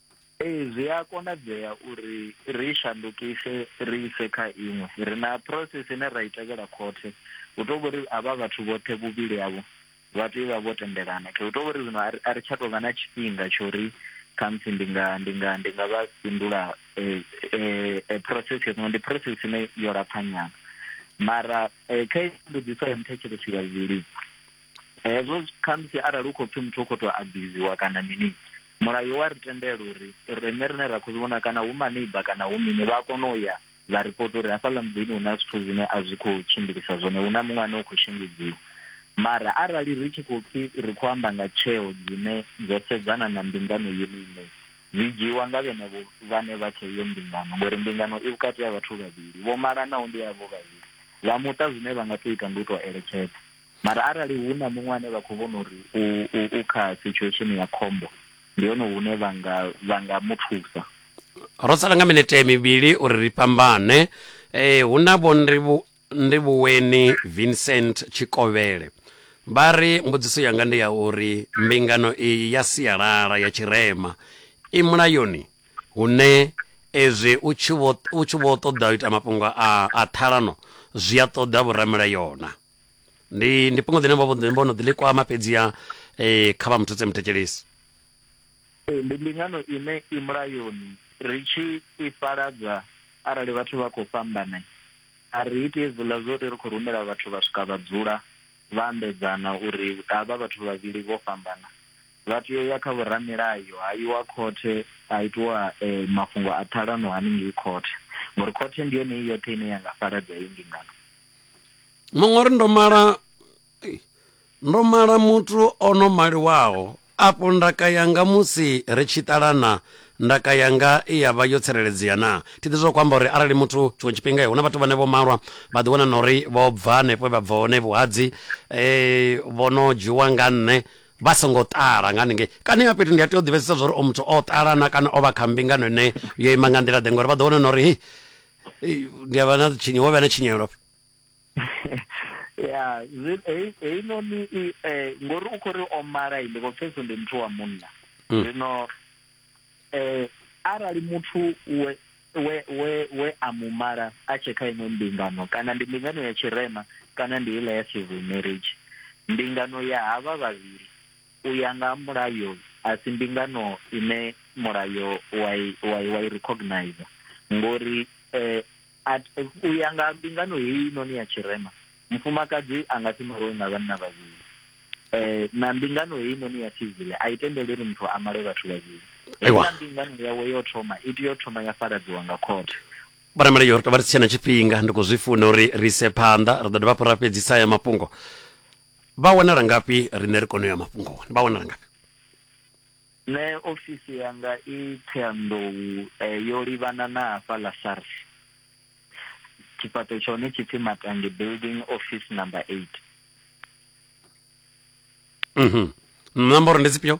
Ee, zwi a konadzea uri ri shandukise ri ise kha iṅwe. Ri na process ine ra i tevhela khothe. Hu tou vhori havha vhathu vhoṱhe vhuvhili havho vha tea u vha vho tendelana. Hu tou vhori zwino a ri tsha tou vha na tshifhinga tsho ri khamusi ndi nga ndi nga ndi nga vha fhindula process yo ndi process ine yo lapfha nyana. Mara kha mbudziso ya muthetshelesi wa vhuvhili. hezwo khamusi arali hu khou pfi muthu u khou tou abuziwa kana mini mulayo wa ri tendela uri rine rine ra khou zwi vhona kana hu maneiba kana hu mini vha kona u ya vha ripota uri hafhaḽa muḓini hu na zwithu zwine a zwi khou tshimbilisa zwone hu na muṅwe ane u khou shengedziwa mara arali ri tshi khou pfi ri khou amba nga tsheo dzine dzo sedzana na mbingano yone ine dzi dzhiiwa nga vhenevho vhane vha kha iyo mbingano ngori mbingano i vhukati ha vhathu vhavhili vho malanaho ndi yavho vhavhili vha muṱa zwine vha nga tou ita ndi u tou eletshedza Mara arali hu na muṅwe ane vha khou vhona uri u, u, u kha situation ya khombo, ndi hone hune vha nga, vha nga mu thusa. Ro sala nga minete mivhili uri ri fhambane. E, hu na vho Ndivhu, Ndivhuweni Vincent Tshikovhele. Vha ri, Mbudziso yanga ndi ya uri mbingano iyi ya sialala ya tshirema i mulayoni hune ezwi u tshi vho, u tshi vho ṱoḓa u ita mafhungo a, a ṱhalano zwi a ṱoḓa vhoramilayona. ndi ndi fhungo ḽine vho vho no ḓi ḽi kwama fhedziha um kha vha muthutse muthetshelesi ee ndi mbingano ine i mulayoni ri tshi i fhaladza arali vhathu vha khou fhambana a ri iti hezwiḽa zwo ri ri khou rumela vhathu vha swika vha dzula vha ambedzana uri havha vhathu vhavhili vho fhambana vha tea u ya kha vhoramilayo ha iwa khothe ha itiwa eh, mafhungo a ṱhalano haningei khothe ngori khothe ndi yone i yoṱhe ine ya nga fhaladza heyi mbingano Muṅwe uri ndo mala ndo mala muthu o no maliwaho afho ndaka yanga musi ri tshi ṱalana ndaka yanga i ya vha yo tsireledzea na thi ḓi zwo kwamba uri arali muthu tshiṅwe tshifhinga hu na vhathu vhane vho malwa vha ḓi wana na uri vho bva hanefho vha bva hone vhuhadzi um vho no dzhiwa nga nṋe vha songo ṱala nga haningei kana ya fhethu ndi a tea u ḓivhesesa zwa uri o muthu o ṱalana kana o vha kha mbingano ine yo ima nga nḓila ḓe ngori vha ḓo wana na uri Ei, ndi a vha na tshinye wo vha na tshinyelo ya heinoni eh, ngori u khou ri o mala ndi khou pfesa ndi muthu wa munna mm. zwino um arali muthu we we we we a mu mala a tshe kha iṅwe mbingano kana ndi mbingano ya tshirema kana ndi iḽa ya civil marriage mbingano ya havha vhavhili U ya nga ha mulayo, a si mbingano ine mulayo wa i, wa i, wa i recognizer ngori eh, at, u ya nga mbingano heyi noni ya tshirema mufumakadzi a nga si maliwe nga vhanna vhavhili eh, na mbingano heyi noni ya sivile a i tendeli uri muthu a male vhathu vhavhili heiḽa mbingano yawe yo thoma i tea u thoma ya faradziwa nga khothe Vhanameli yo ri tovha ri si tshena tshifhinga ndi khou zwi funa uri ri ise phanḓa ri ḓo dovha hafhu ra fhedzisa haya mafhungo Vha wanala ngafhi riṋe ri kone u ya mafhungoni? Vha wanala ngafhi? Nṋe ofisi yanga i Ṱhohoyanḓou yo livhana na hafha ḽa SARS. Tshifhaṱo tsha hone tshi pfi Matangi Building Office Number 8. Nomboro ndi dzifhio?